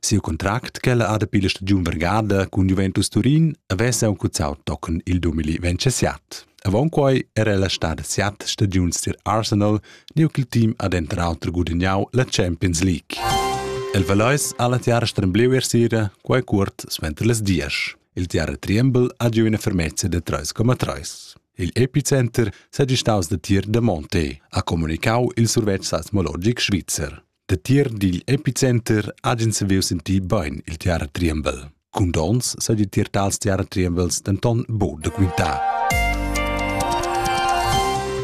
Siu contract ch'ella ha dapi la stagiun vargada cun Juventus Turin avess aunc cuzzau tochen il 2027. Avon quei era ella stada siat stagiuns tier Arsenal, neu ch'il team ha denter auter gudagnau la Champions League. El Valeis ha la tiara strembleu er sera, quei cuort suenter las dias. Il tiara Triembel ha giu ina fermezza da 3,3. Il epicenter seigi staus da tier da Monte, ha comunicau il survetsch seismologic svizzer. Datier digl epicenter ha ins saviu sentir bein il teater Triembel. Cun dons sa di tier tals teater Triembels denton buc da quintar.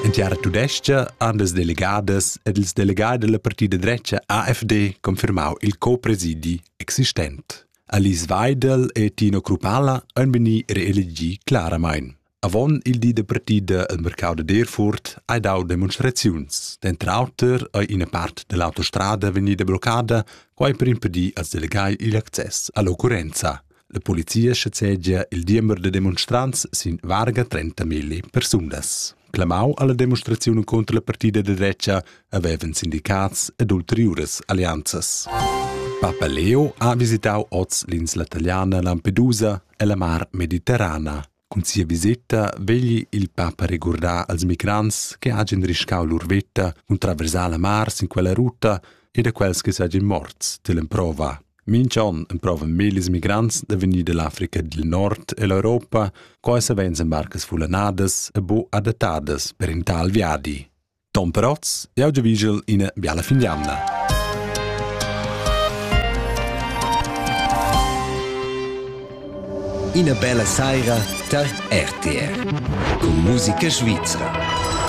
En teater tudestga han les delegadas ed ils delegai della partida drecha AfD confirmau il copresidi existent. Alice Weidel e Tino Krupala han veni reelegi claramain. Avon il di de partida el mercau de Derfurt hai dau demonstraziuns. Denter auter ei ina part dell'autostrada vegnida bloccada, quai per impedir als delegai igl access all'occurrenza. La polizia schazegia il diember de demonstrants sin varga 30.000 persunas. Clamau alla demonstrazione contro la partida de drecha aveven sindicats ed ulteriures alleanzas. Papa Leo ha visitau oz l'insla italiana Lampedusa e la mar Mediterrana. Cun sia viseta vegli il papa regurdar als migrants che hagen riscau lur veta cun traversar la mar sin quella ruta e da quels che seigien morts dell'emprova. Mincha on emprovan millis migrants da vegnir dall'Africa dil Nord e l'Europa, co ei savein embarcas fullanadas e bu adattadas per in tal viadi. Tom Protz, jau giavigel ina biala fin d'jamna. Ina bella saira tar RTR. Con musica svizra.